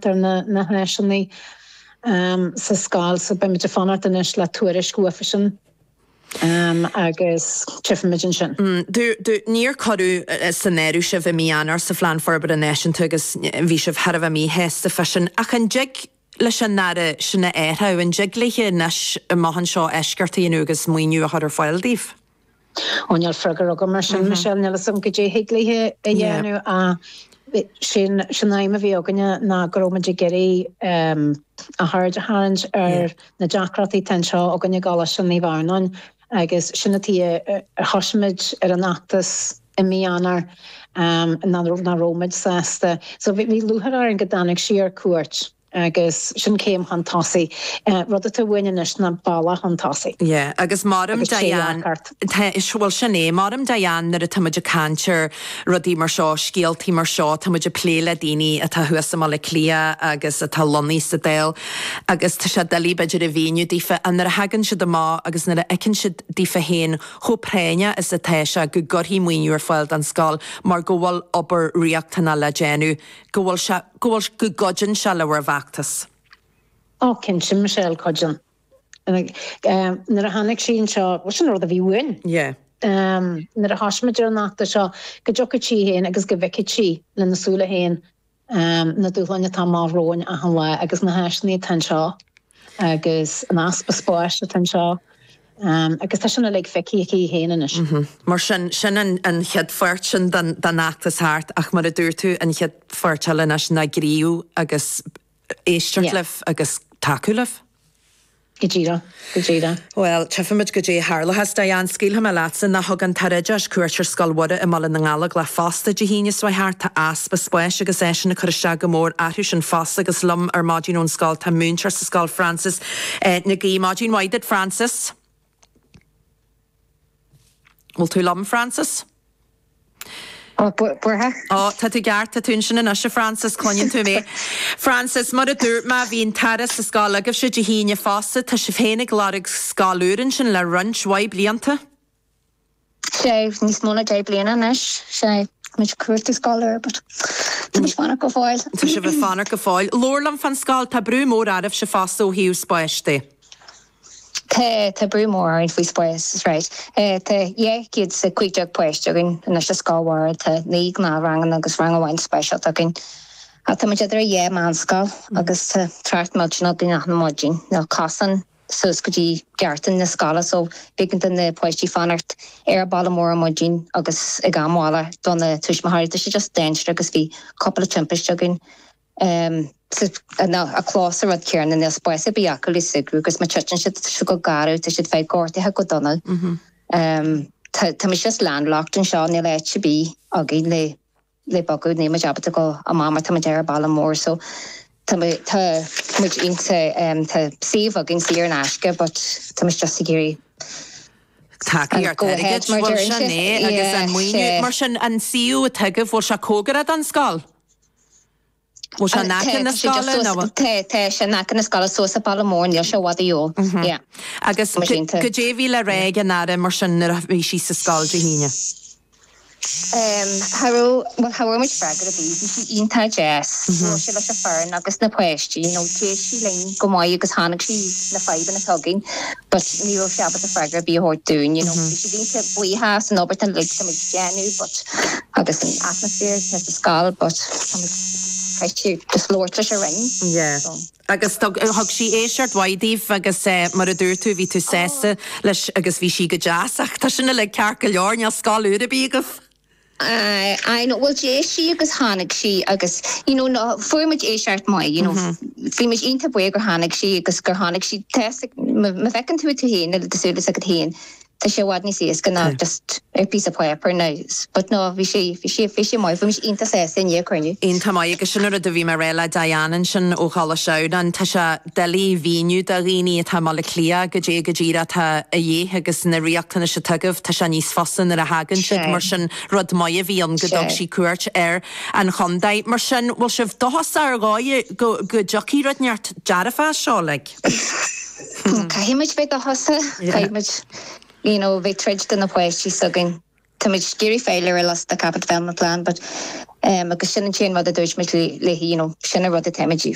Deirtear na háiseanna sa scoil so. Beimid ag fanacht anois le tuairisc uathusan agus tífimid ansin. Níor cuireadh san áireamh sibh i mí Eanáir sa Phlean Forbartha Náisiúnta agus bhí sibh thar a bheith míshásta fá sin. Ach an dtig leis an Aire sin a athrach? An dtig léi anois, amach anseo, eisceachtaí a dhéanamh agus maoiniú a chur ar fáil daoibh? Ó níl freagra agam air sin Michelle níl fhios agam caidé a thig léi a dhéanamh ach sin an aidhm a bhí againne ná go raibh muid ag iarraidh a haird a tharraingt ar na deacrachtaí atá anseo againn i gColáiste Naomh Adhamhnáin agus sin an tuige a thoisigh muid ar an fheachtas i mí Eanáir nach raibh muid sásta so bhí lúcháir orainn go dtáinig sí ar cuairt. agus sin céim chun tosaigh, rud atá uainn anois ná bealach chun tosaigh. Yeah, agus maram, Diane, tá, bhuel, sin é, maram, Diane, nuair atá muid ag caint ar rudaí mar seo, scéaltaí mar seo, tá muid ag plé le daoine atá thuas i mBaile Átha Cliath agus atá lonnaithe sa Dáil agus tá sé doiligh, b'fhéidir, a mhíniú daofa, ach nuair a thagann siad amach agus nuair a fheiceann siad daofa féin chomh práinneach is atá sé go gcuirfí maoiniú ar fáil don scoil mar go bhfuil obair riachtanach le déanamh, go bhfuil sé. go bhfuil, go gcuideonn sé le bhur bhfeachtas. Ó, cinnte, Michelle, cuideonn. Nuair a tháinig sí anseo, bhuel, sin an rud a bhí uainn. Yeah. Nuair a thosaigh muid ar an fheachtas seo, go dtiocfadh sí féin agus go bhfeicfeadh sí lena súile féin na dúshláin atá amach romhainn achan lá agus na háiseanna atá anseo agus an easpa spáis atá anseo. agus tá sin uilig feicthe aici í féin anois. Mar sin, sin an chéad pháirt sin den fheachtas thart, ach mar a dúirt tú, an chéad pháirt eile anois ná gníomhú agus éisteacht libh agus tacú libh. Go díreach, go díreach. Bhuel, tífimid caidé a tharlóchas. Diane, scaoilfidh mé leatsa. Now thug an tAire Oideachais cuairt ar Scoil Mhuire i mBaile na nGallóglach fosta Dé hAoine seo thart. Tá easpa spáis agus é sin ag cur isteach go mór orthu sin fosta agus liom ar maidin ón scoil tá múinteoir sa scoil, Frances, Nic Géadaigh. Maidin mhaith duit, Frances. Bhfuil tú liom, Frances? Buartha? Ó, tá tú ceart, tá tú ansin anois, a Frances, cluineann tú mé. Frances, mar a dúirt mé, bhí an tAire sa scoil agaibhse Dé hAoine fosta, tá sibh féin ag lorg scoil úr ansin le roinnt mhaith blianta? sé níos mó ná deich bliana anois. sé muid cuartú scoil úr but Tá muid ag fanacht go fóill. Tá sibh ag fanacht go fóill. Labhair liom fán scoil. Tá brú mór oraibhse fosta ó thaobh spáis de. Tá, tá brú mór orainn faoi spás, alright. Tá dhá chéad is a cúig déag páiste againn anois sa scoil mhór. Tá naoi ngnáthranganna agus rang amháin speisialta againn. Tá muid idir a dhá mheánscoil agus tá trácht millteanach ann achan maidin. Níl cosán. suas go dtí geaftaí na scoile so, b'éigean do na páistí fanacht ar an bhealach mór ar maidin agus ag am bhaile do na tuismitheoirí. Tá sé just dainséarach agus bhí cupla timpiste againn an clós an rud céarna, níl spás ar bith acu le súgradh agus má thiteann siad, tá siad go garbh, tá siad bheith gortaithe go dona. Tá muid just landlocked anseo, níl áit ar bith againn le. le bogadh, níl muid ábalta goil amach mar tá muid ar an bhealach mór so tá muid, tá muid insa, em, tá suíomh againn saor in aisce but tá muid just ag iarraidh tacaí ar go ahead mar bhuel sin é agus an maoiniú mar sin an suíomh atá agaibh bhfuil sé cóngarach don scoil? Bhfuil sé in aice na scoile nó? Tá, tá sé in aice na scoile, suas an bealach mór, níl sé i bhfad uaidh, yeah. Agus cad é a bhí le rá ag an Aire mar sin nuair a bhí sí sa scoil Dé hAoine? Cha raibh, bhuel cha bhfuair muid freagra ar bith, bhí sí iontach deas, bhuail sí leis an bhfoireann agus na páistí, you know, d'éist sí linn go maith agus chonaic sí na fadhbanna atá againn but ní raibh sí ábalta freagra ar bith a thabhairt dúinn, you know. Bhí sí iontach buíoch as an obair uilig atá muid déanamh but. agus an atmaisféar atá sa scoil but chaith sí the floor tar éis a rinn yeah so. Agus thug thug sí éisteacht mhaith daoibh agus eh mar a dúirt tú bhí tú sásta leis agus bhí sí go deas ach tá sin uilig ceart go leor níl scoil úr ar bith agaibh. Aye aye no bhuel d'éist sí agus tháinig sí agus you know no fuair muid éisteacht maith you know bhí muid iontach buíoch gur tháinig sí agus gur chonaic sí tá's agat má bhfeiceann tú tú féin le do shúile s'agat féin Tá sé i bhfad níos éasca ná just ar phíosa páipear ná but no bhí sé bhí sé bhí sé maith bhí mise iontach sásta i ndiaidh an chruinniú. Iontach maith agus sin an rud a bhí mé a rá le Diane ansin ó Choláiste Adhamhnáin tá sé doiligh a mhíniú do dhaoine atá i mBaile Átha Cliath cad é go díreach atá a dhíth agus na riachtanais atá agaibh tá sé níos fusa nuair a thagann siad mar sin rud maith a bhí ann go dtug sí cuairt ar an chontae mar sin bhfuil sibh dóchasach ar dhóigh go go dtiocfaidh rud inteacht dearfach as seo like. Caithfimid bheith dóchasach, caithfimid you know bheith ag troid do na páistí s'againn. Táimid ag iarraidh fáil ar an list don Capital Development Plan but em agus sin an t-aon rud a dúirt muid léi you know sin an rud a táimid